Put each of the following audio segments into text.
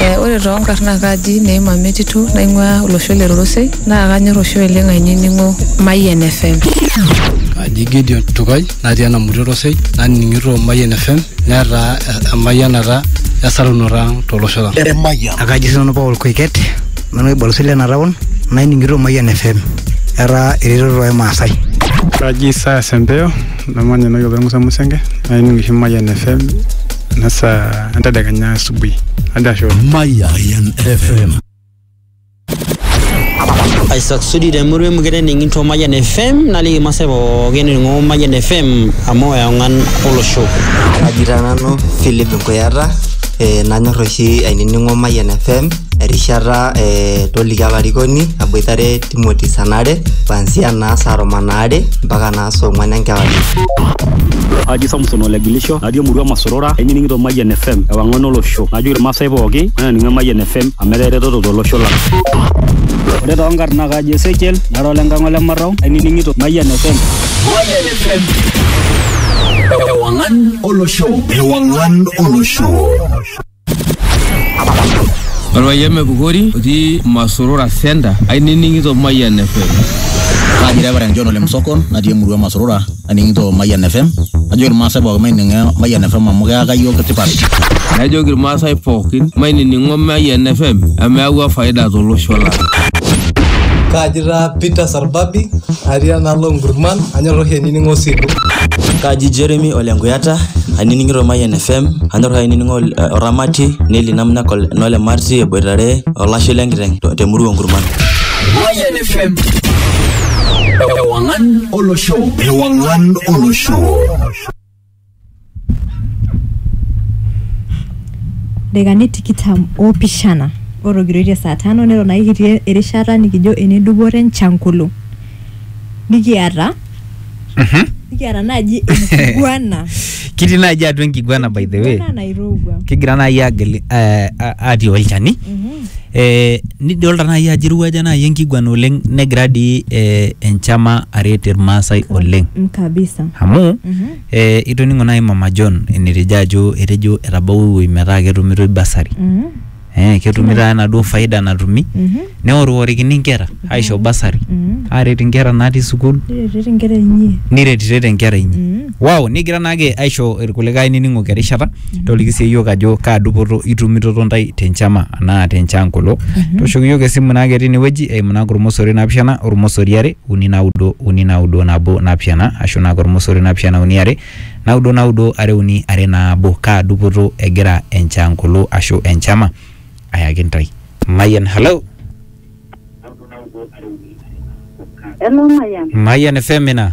Ee ore too nkarn naa kaji Neema Metito naing'uaa olosho le Rorosei naa kanyorr oshi oleng' ainining'o Mayian FM. Kaji Gideon Tukai natii Enamuti Rorosei naning'ito Mayian FM netaa emayianata esarunoto ang' to losho lang'. Akaji sii nanu Paul Koiket nanu olbarnoti lena taon naining'ito Mayian FM etaa eretoto oo Maasai. Kaji Isaya Sempeo. namanya enewueji opa Musa Musenge naining oshi Mayian FM ena saa entedekenya asubuhi ajo ashe oleng. Mayan FM. Isaac Sudi te murua emukete ening'ito Mayian FM naliki irmaasai pookin ening'o Mayian FM amu eong'an olosho. Kaji taa nanu Philip Nkuyata eh, nanyor oshi ainining'o Mayian FM erishata eh, toliki olarikoni aboitare Timothy sanare kuanzia naa saa tomon aare mpaka naa saa ong'wan enkewarie. Aji Samson Olegilisho, natii emurua Masorora, ainining'ito Mayian FM, ewang'an olosho. Najoki Irmaasai pooki, mainining Mayian FM amu etaa eretoto tolosho lang. Ore too nkarn naa kaji Ezekiel, nara ole Nkang' ole Marrau, ainining'ito Mayian FM. Mayian FM. Ewang'an olosho. Ewang'an olosho. Orpayian Mepukori otii Masurura Center ainining'ito Mayian FM. Kaji Reverend John Ole Msokon natii emurua e Masurura aning'ito Mayian FM. Ajoki Irmaasai pooki maining'o Mayian FM amu keaka iyiook tipat. Najoki Irmaasai pookin mainining'o Mayian FM amu eawua faida tolosho lang'. Kaji taa Peter Arbabi atii enaalo Nkurman anyor oshi ainining'o Osilu. Kaji Jeremy ole Nkuyata ainining'ito Mayian FM anyor oshi ainining'o Oramati Neli Namnak nole Marti eboitare olashe le nkiteng te murua Nkurman. Mayian FM Ewang'an olosho Ewang'an olosho Dakikani tikitam oopishana otogiroitie saa tano neton ake kitii erishata nikijo ene dupoto enchankulu nikiata nikiata naaji enkiguana kitii naaji atua enkiguana by the way enkiguana nairowua kigira naaji agil eh, a- atii olchani Eh, nidolta naaji ajo irowuaja naaji enkiguana oleng negira dii eh, enchama aret irmaasai oleng Mm, kabisa amu eh, itoning'o naaji mama john enetejo ajo etejo etabawua ewueji metaa ketumitoi basari Mhm, eh, ketumitoi enaduo faida natumi mhm, neoriworikini inkera aisho basari mhm. aret inkera natii sukuul niretirete inkera inyi niretiret inkera inyi Mhm. Wow, nigira naake aisho irkulikae nining'oki erishata toliki sii iyiook ajo kaa dupoto itumitoto ntae te nchama anaa te nchaangolo toshoki iyiook esimu naake tine wueji eimu naake ormosori naapishana ormosori are uni naudo uni naudo nabo naapishana ashu naake ormosori naapishana uni are naudo naudo are uni are naabo kaa dupoto egira enchaangolo ashu enchama ayaki ntae Mayian hello Hello Mayian. Mayian FM ina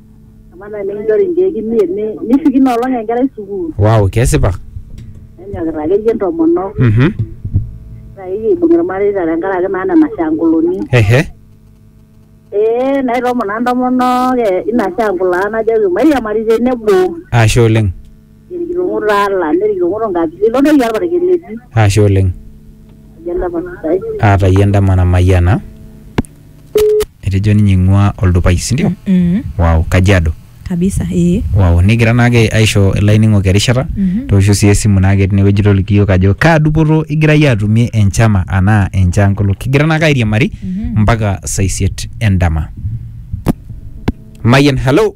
Amaa nai nikinchori nkeek imiet ni- nishuk ina olong enkerai sukuul wow kesipa nenyokita akeyie ntomonok mhm ore akeyie aibung irmareita tenkaraki naa nena shanguluni ehe ee naitoomon naa ntomonok e- ina shangulaa najoki mairiamari tenebo ashe oleng Nerikilong'o taa Allah, nerikilong'o to nkatitin ilo toki olparakel etii. Ashe oleng. Tayie endama sidai. Ah, tayie endama namayiana. Etejo ninye eing'ua oldupai, si ndio? Wow, Kajiado. Kabisa, ee. Wow, nikigira naake aisho ilainining'ok erishata, toosho si esimu naake tinewueji toliki yook ajo kaa dupoto igira yie atumie enchama anaa enchankolo. Kigira naake airiamari mpaka saa isiet endama. Mayian, hello?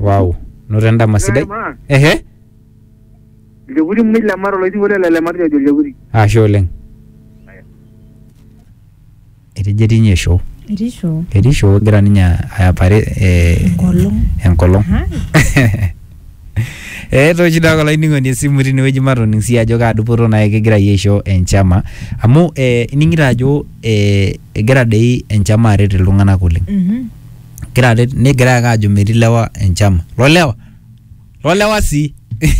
wow noto endama sidai Maa, ehe Ilchekuri mmoja le mara olainining'oni lai le Lematia ojo Ilchekuri. ashe oleng etejo etii ninye show Etii show. etii show egira ninye ayapare eh, Enkolong. enkolong Hai. Eh, toshi doi ake olainining'oni esimu tinewueji matoning sii ajo kaa dupoto naai kigira iyie aisho enchama amu eh, ining'ito ajo eh, egira dei enchama aret iltung'anak oleng Mhm. Gira aret negira ake ajo metii lewa enchama. Lo lewa. Lo lewa sii.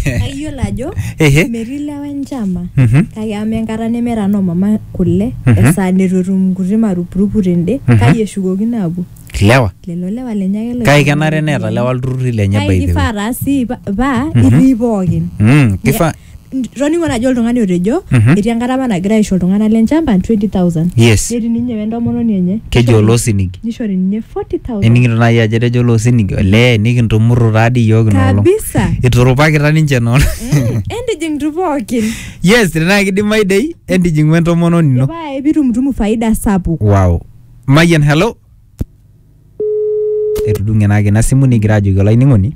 Kayiolo ajo Ehe. metii lewa enchama Mhm. kake amaa enkata nemeeta noo mama kule Mhm. esaa nitu etum nkuti marupurupu tende Mhm. kai eshukokino apuo Lewa. lelo lewa lenye ake Kake kenare neeta lewa ilturrurri lenye by kake the way. kifaa taa sii pa- paa Mhm. itii pookin Mm, kifaa toning'o najo oltung'ani otejo Mhm. etii enkata apa nagira aisho iltung'anak le nchamba 20000 yes netii ninye wentomononi enye keji oloosinigi nishori ninye 40000 eningito naaji ajo etejo oloosinigi olee nikintumurru taadi iyiook inoolong kabisa iturupakita ninche noon Mm, entijing tu pookin yes tenaa kidimayu dei entijing'u entomononi ino epae pitumutumu faida sapuk wow mayian hello etudung'e naake ina simu nigira ajoki olainining'oni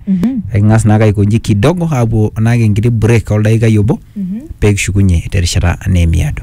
eking'as naake aikonji kidogo aapuo naake enkiti break oldaikai obo pee kishukunye terishata naa emiado.